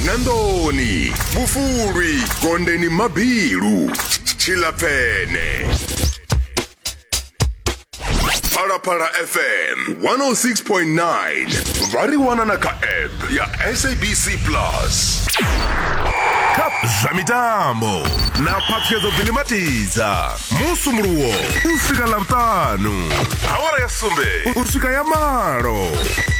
nandoni vhufulwi gondeni mabilu tshilapfene phalaphala fm 106.9 vha ri wana na kha app ya sabc plus kha zwa mitambo na phaṱhuyedzo ḓilimatidza musumuluwo u swika ḽavhutanu awara ya sumbe u swika ya malo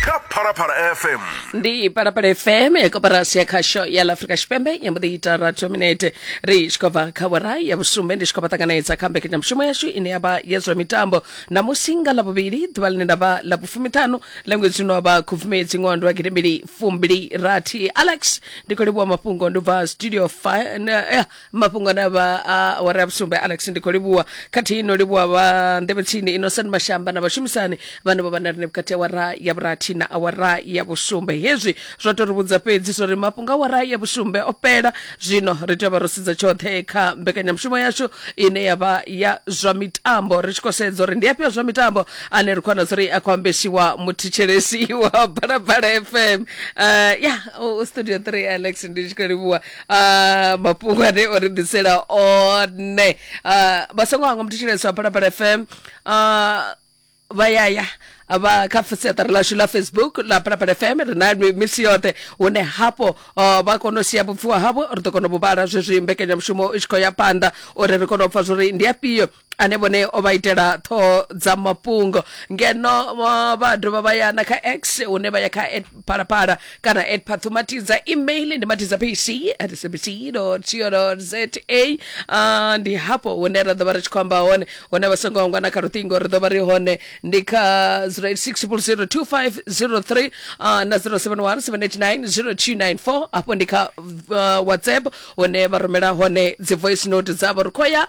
kha phalaphala fm ndi parapara fm ya koporasi ya khasho ya la afrika tshipembe ya mbuḓi ita ratho minete ri tshi khou bva kha vhora ya vhusumbe ndi tshi khou vha ṱanganedza kha mbekanyamushumo yashu ine ya vha ya zwa mitambo ṋamusi nga ḽavhuvhili ḓuvha ḽine nda vha ḽa vhufumiṱhanu ḽa ṅwedzi uno wa vha khubvumedzi ṅwaha ndi wa gidimbili fumbili rathi alex ndi khou livhuwa mafhungo ndi bva studio 5 mafhungo na vha a awara ya vhusumbe alex ndi khou livhuwa khathihi no livhuwa vha nḓevhetsini innocent mashamba na vhashumisani vhane vho vha na rine vhukati awara ya vhurathi na awara ya vhusumbe hezwi zwo tou ri vhudza fhedzi zwo ri mafhungo awara ya vhusumbe o fhela zwino ri tea u vha ro sedza tshoṱhe kha mbekanyamushumo yashu ine ya vha ya zwa mitambo ri tshi khou sedza uri ndi afhio zwa mitambo ane ri khou wana zuri a khou ambesiwa muthetshelesi wa balabala fm uh, ya u studio 3 alex ndi tshi khou livhuwa Ah, mafhungwane o ri ḓisela one Ah, vha songo hangwa muthu tshileso a phalaphala fm Ah, vha yaya vha kha siaṱari lashu la facebook la phalaphala fm ri na mi- misi yoṱhe hune hafho ah, vha kona u sia vhupfiwa havho ri ḓo kona u vhu vhala zwezwi mbekanyamushumo i tshi khou ya phanḓa uri ri kone u pfa zwori ndi afhio ane vhone o vha itela ṱhoho dza mafhungo ngeno uh, vha dovha vha ya na kha x hune vha ya kha at phalaphala kana at phathumatidza email ndi matidza pc at cbc co za uh, ndi hafho hune ra ḓo vha ri tshi khou amba hone hune vha songo angwa na kha luṱingo ri ḓo vha ri hone ndi kha 0860002503 uh, na 0717890294 hafho ndi kha uh, whatsapp hune vha rumela hone dzi voice note dzavho ri khou ya